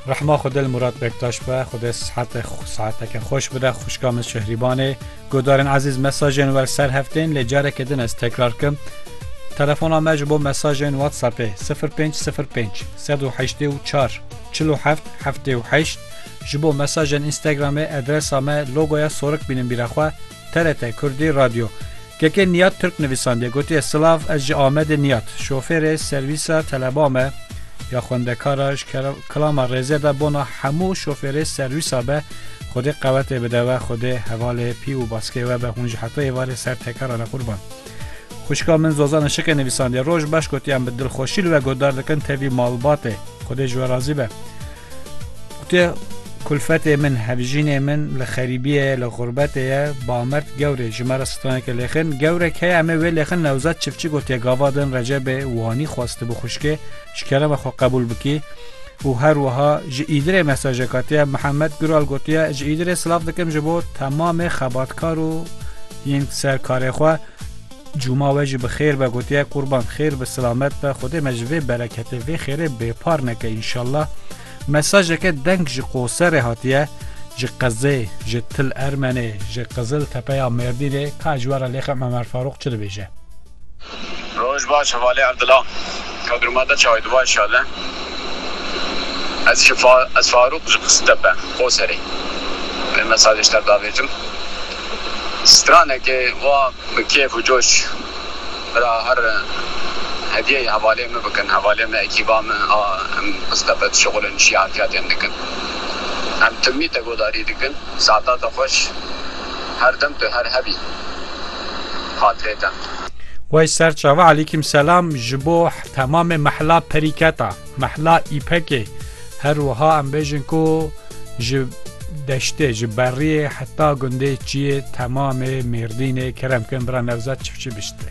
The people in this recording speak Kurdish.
Rehma xwe dil Murat Bektaş be xwe sehate saeteke xweş bide xuşka min şehrîbanê godarên ezîz mesajên wer ser heftên lê careke din ez tekrar kim Telefona me ji bo mesajên WhatsAppê 0505 1984 47 78 ji bo mesajên Instagramê adresa me logoya sorik bînin bîra xwe TRT Kurdî Radyo Kekê Niyad Tirk nivîsandiye gotiye Silav ez ji Amedê Niyad şofêrê servîsa teleba me ya xwendekara ji kilama rêzê de bona hemû şofêrê servîsa be Xwedê qewetê bide we Xwedê hevalê pî û baskê we be hûn ji heto êvarê ser tekera re qurban. Xuşka min Zozana Şike nivîsandiye roj baş gotiyan bi dilxweşî li we godar dikin tevî malbatê Xwedê ji we razî be. Gotiye kulfetê min hevjînê min li xerîbiyê li xurbetê ye bamert gewrê ji me re straneke lêxin gewrek heye em ê wê lêxin newzet çiftçi gotiye gava din recebê wanî xwestibi xuşkê Ji kerema xwe qebûl bikî û her wiha ji Îdirê mesajek hatiye Mihemed Gural gotiye ji Îdirê silav dikim ji bo temamê xebatkar û yên ser karê xwe Cuma we jî bi xêr be gotiye qurban xêr bi silamet be Xwedê me ji vê bereketê vê xêrê bêpar neke înşallah Mesajeke deng ji Qoserê hatiye ji Qezê ji Til Ermenê ji Qizil Tepeya Mêrdînê ka ji we re lêxem Emer Farûq çi dibêje. Roj baş hevalê Erdila Kadruma de çawe duva inşale ez ji ez Farûq ji Qiziltepe Qoserê vê mesajê ji te re davêjim stranekê wa bi kêf û coş bira her hediyeyê hevalê min bikin hevalê min ekîba min a em Qiziltepe dişuxulin şî harfiyatên dikin em timî te godarî dikin saetate xweş her dem tu her hebî. xatirê te. Wey ser çavi Alîkîm selam ji bo temamê mehla perîketa, mehla îpekê her wiha em bêjin ku ji deştê ji berriyê heta gundê çiyê temamê mêrdînê kerem kin bira Nevzat çifçî biştê.